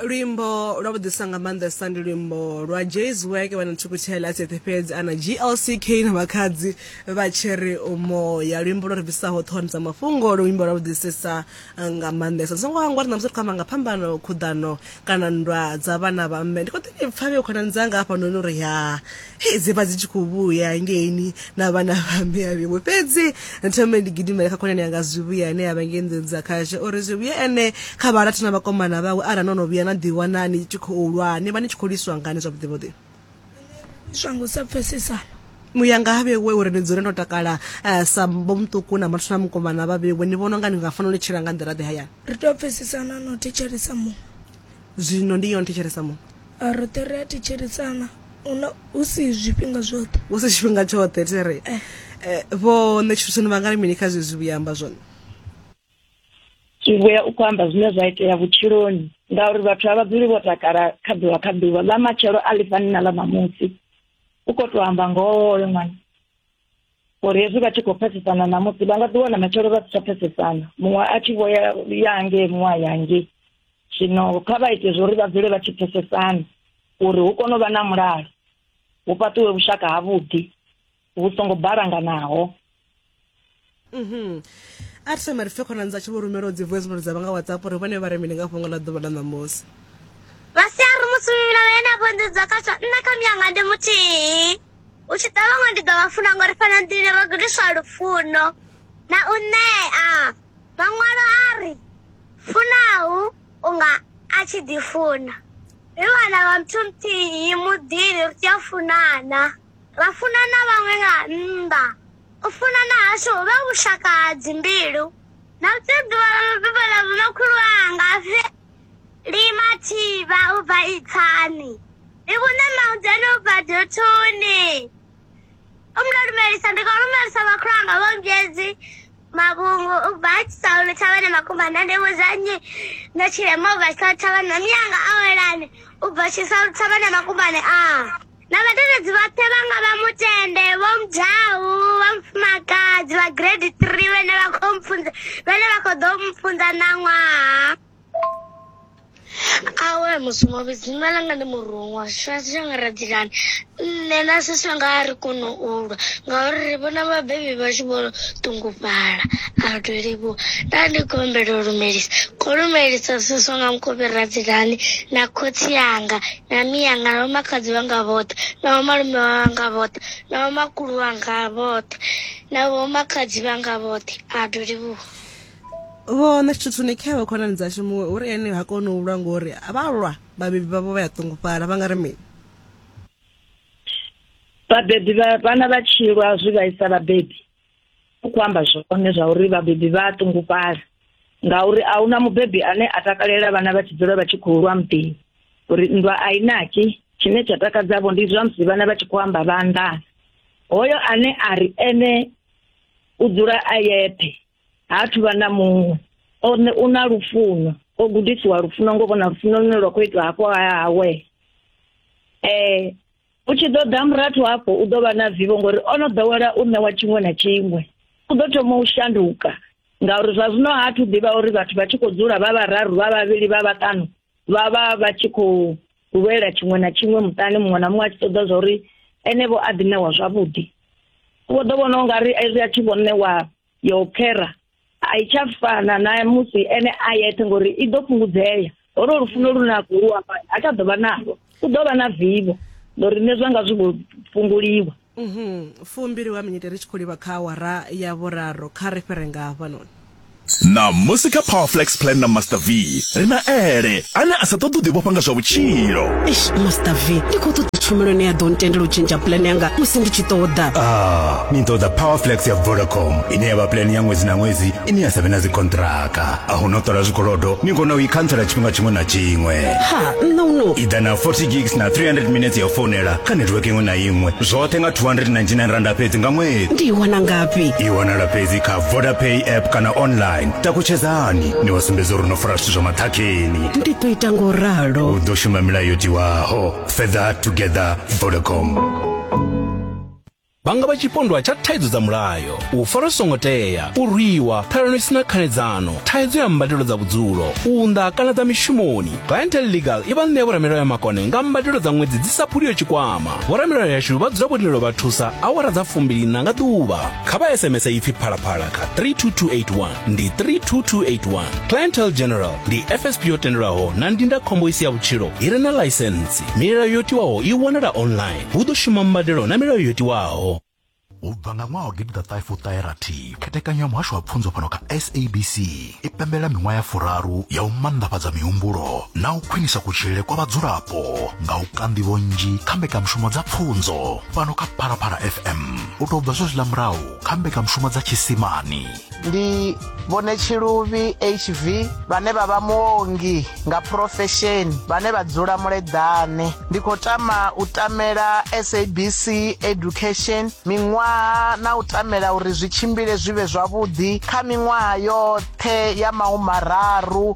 luimbo lwa vhuḓisa nga maanḓesa ndi luimbo lwa jays work vha na thukutshela tsheṱhe fhedzi ana glck na makhadzi vha tshiri umoya luimbo lwo ri bvisaho ṱhohoni dza mafhungo luimbo lwa vhuḓisesa nga maanḓesa ndi songo hangwa ri namusi ri khou amba nga phambano khuḓano kana nndwa dza vhana vha mme ndi khou ḓi ni pfa vhe khonani dzanga hafhanoni uri ya Hei, dze vha dzi tshi khou vhuya ngeini na vhana vha mme a vhiwe fhedzi thome ndi gidimele kha khonani yanga zwivhuya ane a vha ngei nḓuni dza khashe uri zwivhuya ene kha vharathu na vhakomana vhawe arali no no vhuya na ḓiwana ni tshi khou lwa ni vha ni tshi khou lwiswa ngani zwavhuḓivhuḓi lwiswa nga u sa pfesesana muya nga ha vhewe uri ni dzule no takala eh, sa mbo muṱuku na marathu na mukomana vha vhewe ni vhona unga ni nga fanela u tshila nga nḓila ḓe hayani ri tea u pfesesana na u thetshelesa muṅwe zwino ndi yone thetshelesa muṅwe Roṱhe ri a thetshelesana una hu si zwifhinga zwoṱhe. Hu si tshifhinga tshoṱhe thi ri vho Ṋetshusoni vha nga ri mini kha zwezwi vhuya amba zwone? Zwivhuya u khou amba zwine zwa itea vhutshiloni ngauri vhathu a vha dzuli vho takala kha ḓuvha kha ḓuvha, ḽa matshelo a ḽi fani na ḽa ṋamusi. U khou tou amba ngoho hoyo ṅwana. uri hezwi vha tshi khou pfesesana ṋamusi vha nga ḓi wana matshelo vha si tsha pfesesana muṅwe a tshi vho ya ya hangei muṅwe a ya hangei zwino kha vha ite zwo uri vha dzule vha tshi pfesesana uri hu kone u vha na mulalo hu fhaṱiwe vhushaka havhuḓi vhu songo balanganaho Mhm. a ri sema ri pfe khonani dza tshi vho rumela dzi voice note dza vha nga whatsapp uri vhone vha ri mini nga fhungo ḽa ḓuvha ḽa ṋamusi vha si a ri musumbivhila vhe na vhunḓudzwa khaswa nṋe kha muyanga ndi muthihi u tshi ḓa vhaṅwe ndi ḓo vha funa ngori fhano nḓini ro gudiswa lufuno na u ṋea maṅwalo a ri funau unga a tshi ḓifuna ri vhana vha muthu muthihi muḓini ri tea u funana ra funana vhaṅwe nga nnḓa U funana hashu ho vha vhushaka ha dzimbilu. Ndo bebiwa nga mubebi ḽa muno khulu wanga Fhe Lima Thivha u bva Itsani. Ndi vhune Maudeni u bva Duthuni. U mndo lumelisa ndi khou lumelisa makhulu anga vho Ngedzi Mavhungu u bva Tshisaulu Thavhani Makumba nda ndi vhudza nnyi ndo tshilema u bva Tshisaulu Thavhani na mianga awelani u bva Tshisaulu Thavhani Makumbani a. na vhadededzi vhoṱhe vha nga vha mutende vho mudau vha mufumakadzi vha grade three vhene vha khou mpfunza vhene vha khou ḓo mpfunza ṋaṅwaha awe mushumo vhidzima langa ndi muruṅwa tshifhinga tshi nga radzilani nṋe na sisi wanga a ri kone u lwa ngauri ri vhona vhabebi vhashu vho ṱungufhala a ri tou livhuwa nda ndi khou humbela u lumelisa khou lumelisa sisi wanga mukovhe radzilani na khotsi yanga na miyanga na vhomakadzi vhanga vhoṱhe na vhomalume vhanga vhoṱhe na vhomakulu vhanga vhoṱhe na vhomakadzi vhanga vhoṱhe a ḓo livhuwa vho nṋe tshithu ni khewe khonani dzashu muṅwe uri ene ha koni u lwa ngori vha lwa vhabebi vhavho vha ya ṱungufhala vha nga ri mini vhabebi vhana vha tshilwa zwi vhaisa vhabebi u khou amba zwone zwa uri vhabebi vha a ṱungufhala ngauri a huna mubebi ane a takalela vhana vha tshi dzula vha tshi khou lwa muḓini uri nndwa a i naki tshine tsha takadzavho ndi zwa musi vhana vha tshi khou amba vha nḓana hoyo ane a ri ene u dzula a yeṱhe ha thu vha na muṅwe one u na lufuno o gudisiwa lufuno ngo vhona lufuno lune lwa khou itwa hafho hawe um eh, u tshi ḓo ḓa murathu hafho u ḓo vha na vivho ngori o no ḓowela u ṋewa tshiṅwe na tshiṅwe u ḓo thoma u shanduka ngauri zwa zwino ha thu ḓivha uri vhathu vha tshi khou dzula vha vhararu vha vhavhili vha vhaṱanu vha vha vha tshi khou lwela tshiṅwe na tshiṅwe muṱani muṅwe na muṅwe a tshi ṱoḓa zwa uri ene vho a ḓi ṋewa zwavhuḓi vho ḓo vhona u nga ri ezwi a thi vho ṋewa yo khera a i tsha fana na musi ene a yeṱhe ngori i ḓo fhungudzea holo lufuno lu na khou amba a tsha ḓovha nalo u ḓovha na vivo ngori nṋe zwanga zwi vho fhunguliwa mhm fumbili wa minyete ri tshi khou livha kha awara ya vhuraru kha ri fhire nga hafhanoni ṋamusi kha powerflex plan na master v ri na ele ane a sa ṱoḓi u ḓivhofha nga zwa vhutshilo Eish, Master V, ndi khou ṱoḓa tshumelo ine ya ḓo ntendela u tshentsha plan yanga musi ndi tshi ṱoḓa. Ah, ni ṱoḓa powerflex ya vodacom ine ya vha plan ya ṅwedzi na ṅwedzi ine ya sa vhe na dzikontraka a hu no ṱola zwikolodo ni kona u i khantsela tshifhinga tshiṅwe na tshiṅwe Ha, nṋe u no. i ḓa na 40 gigs na 300 minutes ya u founela kha netiweke iṅwe na iṅwe zwoṱhe nga 299 randa fhedzi nga ṅwedzi Ndi i wana ngafhi? i wanala fhedzi kha vodapay app kana online takutshedzani ni vha sumbedza uri no fara zwithu zwa maṱhakheni ndi ḓo ita ngo ralo u ḓo shuma milayo yo tiwaho fetha together vodacom vhanga vha tshipondwa tsha thaidzo dza mulayo u fara songo tea u rwiwa ṱhalano isina khanedzano thaidzo ya mbadelo dza vhudzulo u nda kana dza mishumoni clientel legal i vha ṋea vhoramilayo ya makone nga mbadelo dza ṅwedzi dzi sa phuliyo tshikwama vhoramilayo yashu vha dzula vhotendelo vha thusa awara dza fumbili na nga ḓuvha kha vha sms ipfi phalaphala kha 32281 ndi 32281 clientel general ndi fsp yo tendelwaho na ndindakhombo isi ya vhutshilo i re na ḽaisentsi milayo yo tiwaho i wanala online hu ḓo shuma mbadelo na milayo yo tiwaho u bva nga ṅwaha wa gidiḓaṱahe fuṱahe rathi khethekanyo ya muhasho wa pfunzo fhano kha sabc i pembelela miṅwaha ya furaru ya u manḓafhadza mihumbulo na u khwinisa kutshilele kwa vhadzulapo nga u kanḓivho nnzhi kha mbekanyamushumo dza pfunzo fhano kha phalaphala fm u tou bva zwezwiḽa murahu kha mbekanyamushumo dza tshisimani ndi vhone tshiluvhi hv vhane vha vha muongi nga phurofesheni vhane vha dzula muleḓane ndi khou tama u tamela sabc education miṅwaha na u tamela uri zwi tshimbile zwi vhe zwavhuḓi kha miṅwaha yoṱhe ya mahumararu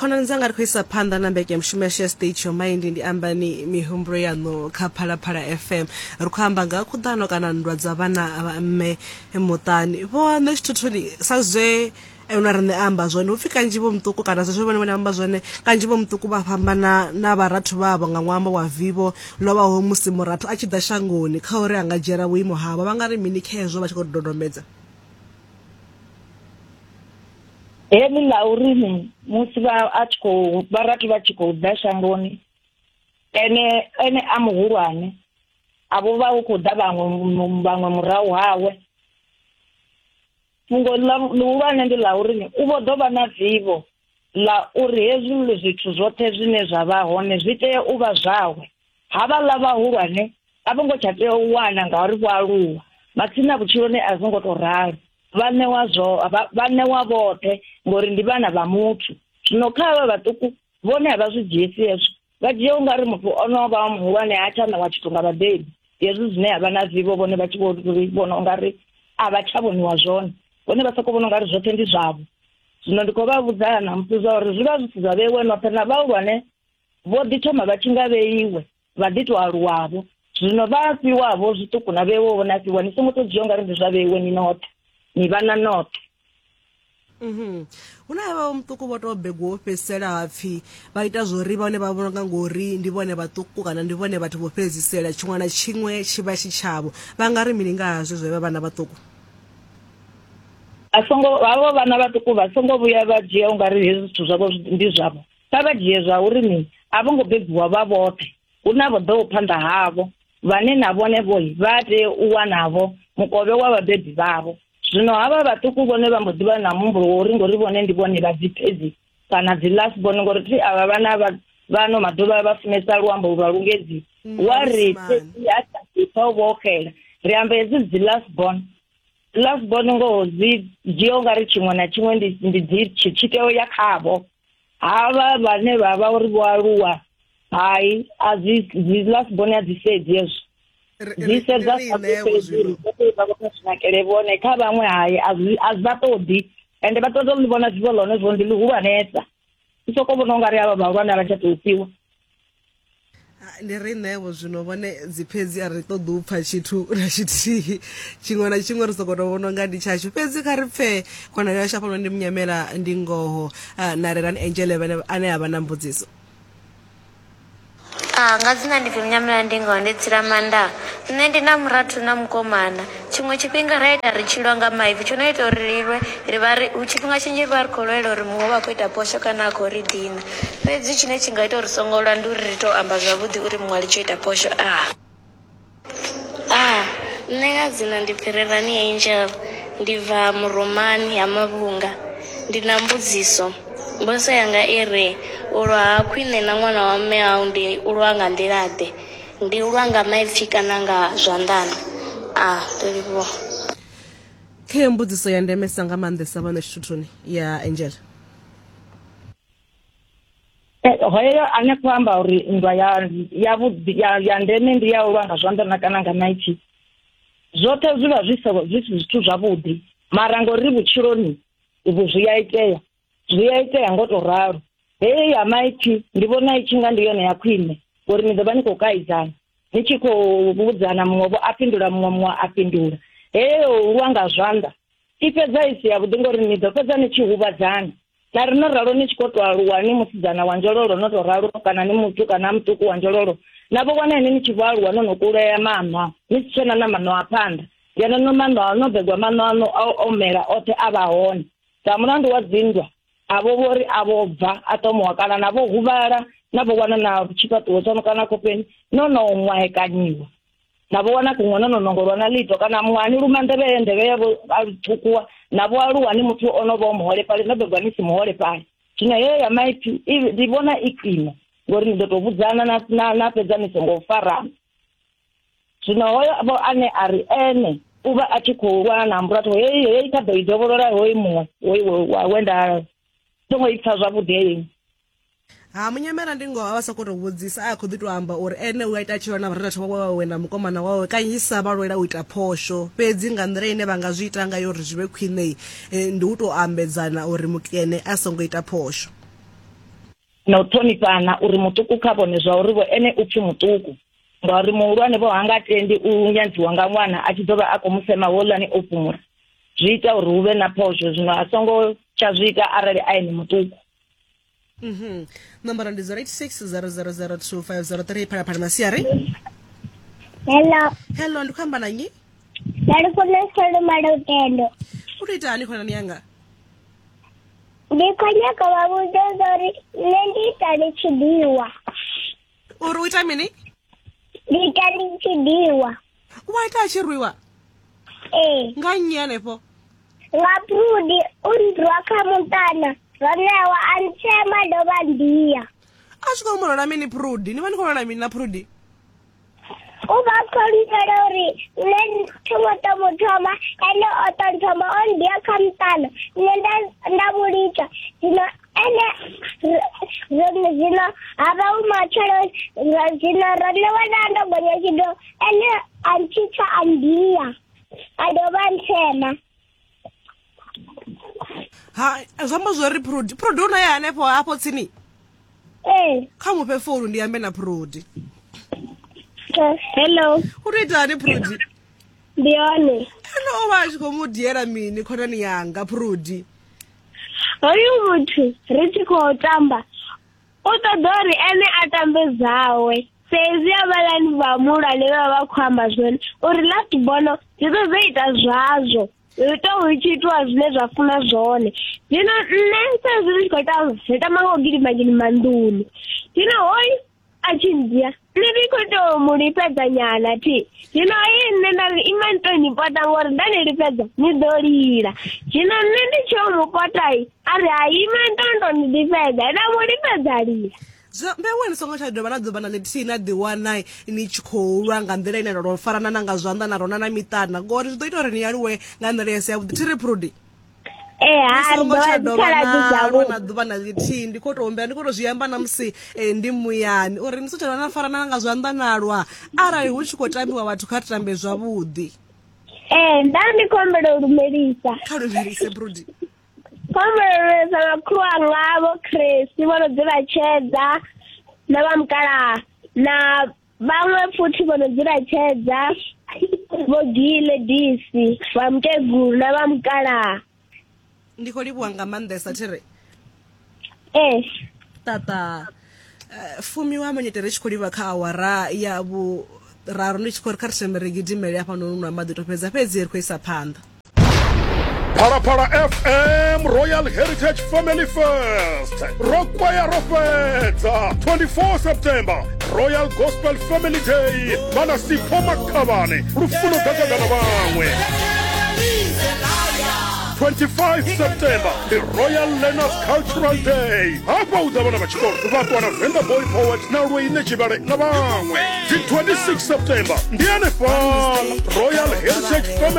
khonani dzanga ri khou isa phanḓa na mbekemushumo yashu ya state your mind ndi ambani mihumbulo yaṋu kha phalaphala fm ri khou amba nga khuḓano kana nndwa dza vhana vha mme muṱani vho nṋe tshithuthuni sa zwe na riṋe a amba zwone upfhi kanzhi vho muṱuku kana zwezwo vhone vhone amba zwone kanzhi vho muṱuku vha fhambana na vharathu vhavho nga ṅwambo wa vivo lovhaho musi murathu a tshi ḓa shangoni kha uri a nga dzhiela vhuimo havho vha nga ri mini khezwo vha tshi khou dodombedza heḽi ḽa uri musi vha a tshi khou vharathu vha tshi khou ḓa shangoni ene ene a muhulwane a vho vha hu khou ḓa vhaṅwe vhaṅwe murahu hawe Fhungo ḽihulwane ndi ḽa uri u vho ḓo vha na vivho ḽa uri hezwi zwithu zwoṱhe zwine zwa vha hone zwi tea u vha zwawe. Havhaḽa vhahulwane a vho ngo tsha tea u wana ngauri vho aluwa, matsina vhutshiloni a zwo ngo tou ralo. Vha ṋewa zwo vha ṋewa vhoṱhe ngori ndi vhana vha muthu. Zwino kha havha vhaṱuku vhone a vha zwi dzhiesi hezwo. vha dzhia u nga ri muthu o no vha muhulwane ha tsha ṋewa tshithu nga vhabebi hezwi zwine ha vha na vivho vhone vha tshi vho vhona u nga ri a vha tsha vhoniwa zwone vhone vha sokou vhona u nga ri zwoṱhe ndi zwavho zwino ndi khou vha vhudzana na musi zwa uri zwi vha zwi si zwa vheiwe noṱhe na vhahulwane vho ḓi thoma vha tshi nga vheiwe vha ḓi tou aluwavho zwino vha fhiwavho zwiṱuku na vheiwe vhone a fhiwa ni songo to dzhia u nga ri ndi zwa vheiwe ni noṱhe ni vha na noṱhe Mhm. hu na vha muṱuku vho tou begwa wo fhedzisela ha pfhi vha ita zwo ri vhone vha vhona nga ngori ndi vhone vhaṱuku kana ndi vhone vhathu vho fhedzisela tshiṅwe na tshiṅwe tshi vha tshi tshavho vha nga ri mini nga hazwo zwe vha vhana vhaṱuku a songo havho vhana vhaṱuku vha songo vhuya vha dzhia u nga ri hezwi zwithu zwavho ndi zwavho kha vha dzhie zwa uri mini a vho ngo bebiwa vha vhoṱhe hu na vho ḓoho phanḓa havho vhane na vhone vho vha tea u wanavho mukovhe wa vhabebi vhavho Zwino havha vhaṱuku vhone vha mbo ḓi vha na muhumbulo wa uri ngori vhone ndi vhone vha dzi phedzi kana dzi last born ngori thi avha vhana vha vhano maḓuvha vha funesa luambo lwa lungedzi mm, wa ri phedzi a ṱaṱisa u vhoxela ri amba hedzi dzi last born last born ngoho dzi dzhia u nga ri tshiṅwe na tshiṅwe ndi dzi tshitshiteo ya khavho havha vhane vha vha uri vho aluwa hai a zwi zwi last born a dzi sedzi hezwo dzi sedza saezinakele vhone kha vhaṅwe hai a zwi vha ṱoḓi ende vha ṱoḓa u ḽi vhona zwivo ḽone zwo ndi ḽihulwanesa i sokou vhona u nga ri avha vhahulwane a vha tsha tou fhiwa Ni ri ṋeevho zwino vhone dzi fhedzi a ri ṱoḓi u pfa tshithu na tshithihi tshiṅwe na tshiṅwe ri soko to vhona nga ndi tshashu fhedzi kha ri pfee khonani yashu afhanoni ndi munyamela ndi ngoho na rerani angele vhene ane a vha na mbudziso Ah, nga dzina ndi pfi Munyamela Ndingo ndi Tsilamanda. Nṋe ndi na murathu na mukomana. Tshiṅwe tshifhinga ra ita ri tshi lwa nga maipfi, tsho no ita uri ri lwe ri vha ri, tshifhinga tshinzhi ri vha ri khou lwela uri muṅwe u vha a khou ita phosho kana a khou ri dina. Fhedzi tshine tshi nga ita uri ri songo lwa ndi uri ri tou amba zwavhuḓi uri muṅwe a litshe u ita phosho. A. A, Nṋe nga dzina ndi Phirirani Angel, ndi bva Murumani, Ha Mavhunga. Ndi na mbudziso. Mbudziso yanga i ri, U lwa ha khwine na ṅwana wa mme au ndi u lwa nga nḓila-ḓe? Ndi lwa nga maipfi kana nga zwanḓani? A ri livhuwa. Kha iyo mbudziso ya ndemesa nga maanḓesa vhano tshithuthuni ya Angela. Hoyo ane khou amba uri nndwa ya ya vhuḓi ya ya ndeme ndi ya u lwa nga zwanḓa na kana nga maipfi zwoṱhe zwi vha zwi zwi si zwithu zwavhuḓi mara ngori vhutshiloni vhu zwi a itea zwi a itea ngo to ralo heyo ya maipfi ndi vhona i tshi nga ndi yone ya khwine ngori ni ḓo vha ni khou kaidzana ni tshi khou vhudzana muṅwe vho a fhindula muṅwe muṅwe a fhindula heyo lwa nga zwanḓa i fhedza i si yavhuḓi ngori ni ḓo fhedza ni tshi huvhadzana na ri no ralo ni tshi khou to aluwa ni musidzana wa nzhololo no to ralo kana ni muthu kana muṱuku wa nzhololo na vho wana ine ni tshi vho aluwa no no kulea maṋwa ni si tshena na maṋwa a phanḓa ngeno no maṋwa no begwa maṋwa ano a omela oṱhe a vha hone Sa mulandu wa dzinndwa, avho vho ri a vho bva a tomowa kana na vho huvhala na vho wana na tshifhaṱuwo tsho no kana khofheni no no ṅwahekanyiwa na vho wana kuṅwe no no nongolwa na ḽito kana muṅwani luma nḓevhe ye nḓevhe yavho a ṱhukuwa na vho aluwa ni muthu o no vha o muholefhali no bebwa ni si muholefhali zwino heyo ya maipfi ndi vhona i khwine ngori ni ḓo tou vhudzana na na na fhedza ni songo farana zwino hoyo vho ane a ri ene u vha a tshi khou lwa na ambula to heyi heyi kha ḓo i dovholola hoyi muṅwe hoyi we nda songo i pfa zwavhuḓi heyi ha munyamela ndi ngoho a vha sokou tou vhudzisa a khou ḓi tou amba uri ene u a ita tshilwa na vharatha wawe wawe na mukomana wawe kanzhisa vha lwela u ita phosho fhedzi nga nḓila ine vha nga zwi ita ngayo uri zwi vhe khwinei eh, ndi u tou ambedzana uri mukene a songo ita phosho na u ṱhonifhana uri muṱuku kha vhone zwa uri vho ene u pfhi muṱuku ngauri muhulwane vho hanga tendi u nyandziwa nga ṅwana a tshi ḓo vha a khou musema holani o fhumula zwi ita uri hu vhe na phosho zwino a songo tsha zwi ita arali a ene muṱuku mhm. nomboro ndi 0860002503 phalaphala masiari hello hello ndi khou amba na nnyi ndalifuna solomalo tendo u to itani khonani yanga ndi khou nyaka vha vhudze uri nṋe ndi ita ndi tshi ḓiwa uri u ita mini ndi ita ndi tshi ḓiwa u wa ita a tshi rwiwa ee nga nnyi henefho nga prudi u nrwa kha muṱana ronewa a ntshema dovha ndiya a zwi khou molola mini prudi ni vha ni khou lolola mini na prudi o ba kolibele gore nne thomoto mothoma ene o tonthoma o ndia khamtano nne nda vhulitsha zwino ene zwino ha vha u matshelo zwino ro ṋewa na ndo gonya tshido ene a ntshitsa a ndia a dovha nthema ha zwi amba zwori prodi prodi u naye hanefho hafho tsini ee kha mufhe founu ndi ambe na prodi Eh, hello u to ita hani prodi ndi hone ene o vha a tshi khou mu diela mini khonani yanga prodi hoyu muthu ri tshi khou tamba u ṱoḓa uri ene a tambe dzawe fhedzi havhalani vhahulwane vha vha khou amba zwone uri ḽa tibono dzi ḓo dzo ita zwazwo ri tou hu tshi itiwa zwine zwa funa zwone zwino nṋe sa zwi ndi tshi khou ita ri tama nga u gidima gidima nḓuni zwino hoyu a tshi ndzhia nṋe ndi khou tou mu lifhedza nyana thi zwino ayi nṋe nda ri ima ni tou ni pota ngori nda ni lifhedza ni ḓo lila zwino nṋe ndi tsheo mu potai a ri ha ima ni tou ni tou ni lifhedza nda mu lifhedza lila Zwino mbewe ni songo tsha dovha na ḓuvha na ḽithihi na ḓiwana ni tshi khou lwa nga nḓila ine ro farana na nga zwanḓa na rona na miṱana ngori zwi ḓo ita uri ni aluwe nga nḓila ya si yavhuḓi thi ri phrudi ni songo tsha dovha na lwa na ḓuvha na ḽithihi ndi khou tou humbela ndi khou tou zwi amba na musi eh, ndi muyani uri ni songo tsha dovha na farana na nga zwanḓa na lwa arali hu tshi khou tambiwa vhathu kha tambe zwavhuḓi ee nda ndi khou humbela u lumelisa kha lumelise brudi Khomeleleza na khulu anga vho Chris vho no dzula tshedza na vha mukalaha na vhaṅwe futhi vho no dzula tshedza vho gile disi vha mukegulu na vha mukalaha ndi khou livhuwa nga maanḓesa thiri ee ṱaṱa eh, fumi wa monyete ri tshi khou livha kha awara ya vhuraru ndi tshi khou ri kha ri thome ri gidimele hafha no nunwa maḓi to fhedza fhedzi ri khou isa phanḓa phalaphala fm royal heritage family fest ro kwaya ro fhedza 24 september royal gospel family day vhana sipho makhavhane lufuno ḓadzagana vhaṅwe 25 september ndi royal learners cultural day hafha hu ḓa vhana vha tshikolo vha ṱuwa na venda boy poet na lweine tshivhale na vhaṅwe dzi 26 september ndi hanefhala royal heritage family